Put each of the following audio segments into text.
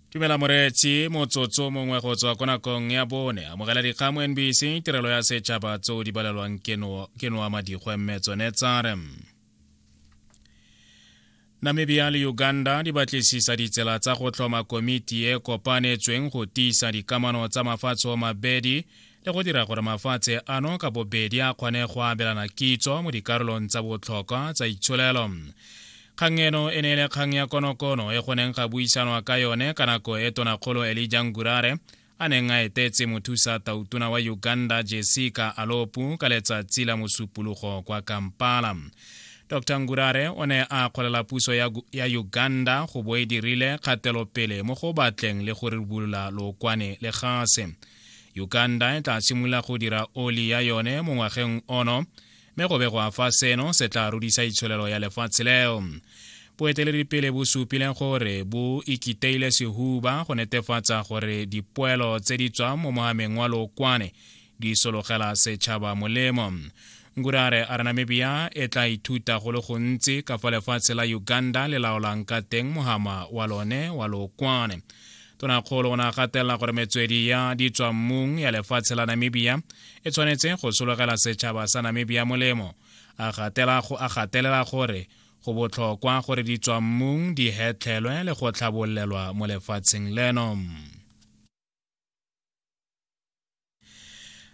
tumela moreetsi motsotso mongwe go tswa ko nakong ya bone amogela dikgang mo nbc tirelo ya setšhaba tseo di balelwang ke noa madikgwe mme tsone tsare namibia le uganda di batlisisa ditsela tsa go tlhoma komiti e kopanetsweng go tiisa dikamano tsa mafatshe o mabedi le go dira gore mafatshe ano ka bobedi a kgone go abelana kitso mo dikarolong tsa botlhokwa tsa itsholelo kgang eno e ne e le kgang ya konokono e go neng ga buisanwa ka yone ka nako e tonakgolo elija ngurare a neng a etetse mothusa tautona wa uganda jessica alopu ka letsatsi la mosupologo kwa kampala dr ngurare o ne a kgolela puso ya, ya uganda go bo e dirile kgatelopele mo go batleng le go ribolola lookwane le gase uganda e tla simolola go dira oli ya yone mo ngwageng ono mme go begwa fa seno se tla rudisa itsholelo ya lefatshe leo boeteledipele bo supile gore bo ikiteile sehuba go netefatsa gore dipoelo tse di tswang mo mogameng wa lokwane di sologela setšhaba molemo ngurare a re namibia e tla ithuta go le gontsi ka fa lefatshe la uganda le laolang ka teng mohama wa lone wa lokwane tonakgolo o ne a gatelela gore metswedi ya ditswammung ya lefatshe la namibia e tshwanetse go sologela setšhaba sa namibia molemo a gatelela gore go botlhokwa gore ditswammung di hetlhelwe le go tlhabolelwa mo lefatsheng leno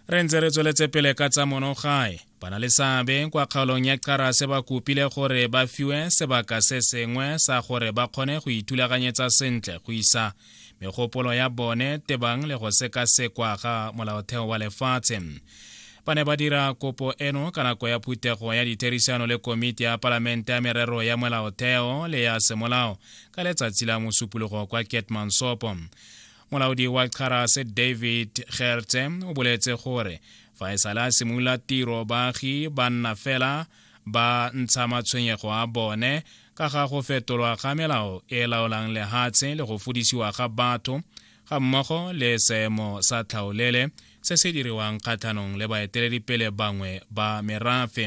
re ntse re tsweletse pele ka tsa monogae bana le seabe kwa kgaolong ya qarase ba kopile gore ba fiwe sebaka se sengwe sa gore ba kgone go ithulaganyetsa sentle go isa megopolo ya bone tebang le go sekasekwa ga molaotheo wa lefatshe ba ne ba dira kopo eno ka nako ya phuthego ya ditherisano le komiti ya palamente ya merero ya molaotheo le ya semolao ka letsatsi la mosupologo kwa ketmansopo molaodi wa charas david gertse o boletse gore fa e sale a simolola tiro baagi ba nna fela ba ntsha matshwenyego a bone ka ga go fetolwa ga melao e laolang lehatshe le go fodisiwa ga batho ga mmogo le seemo sa tlhaolele se se diriwang kgatlhanong le baeteledipele bangwe ba merafe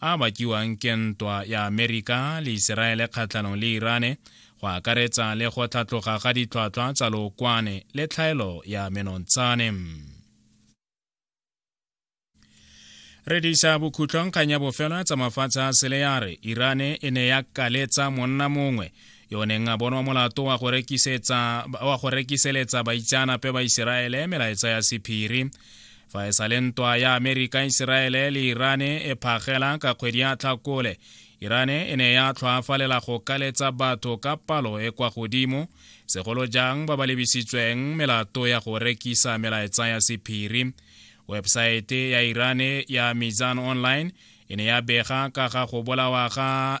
a bakiwang ke ntwa ya amerika le iseraele kgatlhanong le irane go akaretsa le go tlhatloga ga ditlhwatlhwa tsa lookwane le tlhaelo ya menontshane re disa bokhutlong kgang ya bofelo tsa mafatshe a sele ya re irane e ne ya kaletsa monna mongwe yo neng a bonwa molato wa go rekiseletsa baitseanape ba iseraele melaetsa ya sephiri fa e sa le ntwa ya amerika iseraele le irane e phagela ka kgwedi ya tlhakole irane e ne ya tlhoafalela go kaletsa batho ka palo e kwa godimo segolo jang ba ba lebisitsweng melato ya go rekisa melaetsa ya sephiri webesaete ya irane ya mizan online e ne ya bega ka ga go bolawa ga